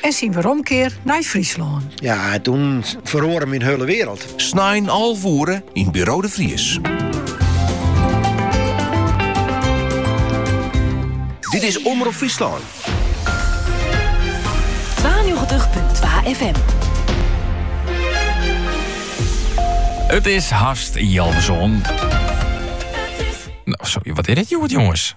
En syn weromkear nei Fryslân. Ja, toen feroare myn hele wereld. Snein alve oere yn Buro de Vries. Dit is Omrop Fryslân. 92.2 FM. It is hast healwei sân. Nou, sorry, wat is dit, jongens?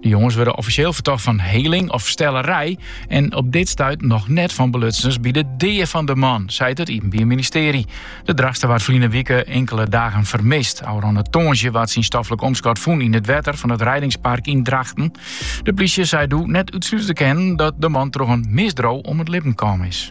De jonges wurde offisjeel fertocht fan heling of stellerij en op dit stuit noch net fan belutsenens by de dea fan de man, seit it Iepenbier Ministearje. De Drachtster waard ferline wike inkele dagen fermist. Ofrûne tongersdei waard syn stoflik omskot fûn yn it wetter fan it Reidingspark yn Drachten. De plysje sei doe net útslute te kinnen dat de man troch in misdriuw om it libben kaam is.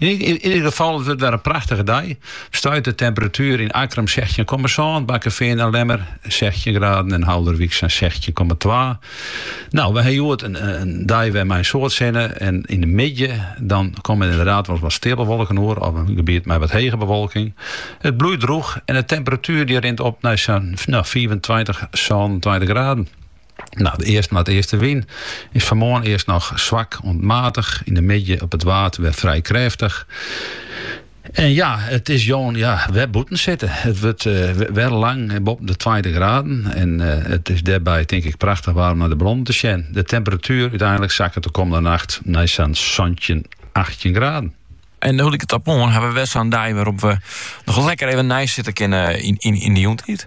Yn ieder gefal, it wurdt wer in prachtige dei. Stuit de temperatuer yn Akkrum sechstjin komma sân, Bakkefean en Lemmer sechstjin graden en Haulerwyk sa'n sechstjin komma twa. No, wy ha hjoed in dei wer mei in soad sinne en yn de middei dan komme der ynderdaad wolris wat steapelwolken oer of in gebiet mei wat hege bewolking. It bliuwt drûch en de temperatuer dy rint op nei sa'n fiifentweintich, sânentweintich graden. No, de east-noardeastewyn is fan 'e moarn earst noch swak oant matich, yn de middei op it Waad wer frij krêftich. En ja, it is jûn ja, wer bûten sitte. It wurdt eh, wer lang boppen de tweintich graden. En eh, it is dêrby tink ik prachtich waar om nei de ballonnen te sjen. De temperatuer úteinlik sakket de kommende nacht nei sa'n santjin, achttjin graden. En hoe ik het op oan, ha we wer sa'n dei wêrop't we noch lekker even neisitte kinne yn, yn, yn de jûntiid.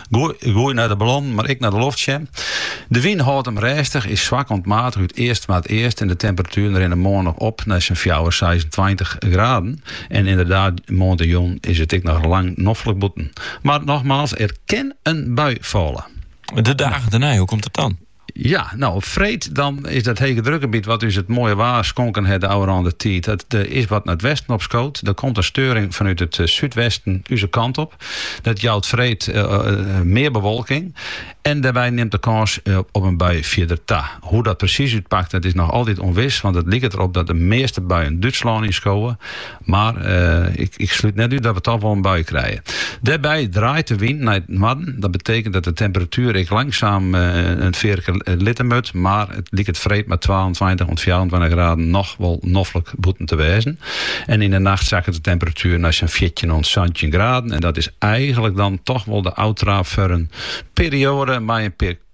Goed nei de ballonnen, mar ek nei de loft sjen. De wyn hâldt him rêstich, is swak oant matich út east-noardeast en de temperatueren rinne moarn noch op nei sa'n fjouwer, seisentweintich graden. En ynderdaad, moarntejûn is it ek noch lang noflik bûten. Mar nochmaals, der kin in bui falle. De dagen dernei, hoe komt dat dan? Ja, no, op freed dan is dat hegedrukgebiet wat ús it moaie waar skonken hat de ôfrûne tiid, dat is wat nei it westen opskood. Der komt in steuring fanút it súdwesten ús kant op. Dat jout freed mear bewolking en dêrby nimt de kâns op in bui fierder ta. Hoe dat presys útpakt, dat is noch altyd ûnwis, want it liket der op dat de measte buien Dútslân yn skowe. Mar ik slút net út dat we toch wol in bui krije. Dêrby draait de wyn nei it noarden. Dat betekent dat de temperatuer ek langsaam in fearke litte moat, mar it liket freed mei twaentweintich oant fjouwerentweintich graden noch wol noflik bûten te wêzen. En yn de nacht sakket de temperatuer nei sa'n fjirtjin oant santjin graden en dat is eigenlik dan toch wol de ôftraap foar in perioade mei in pear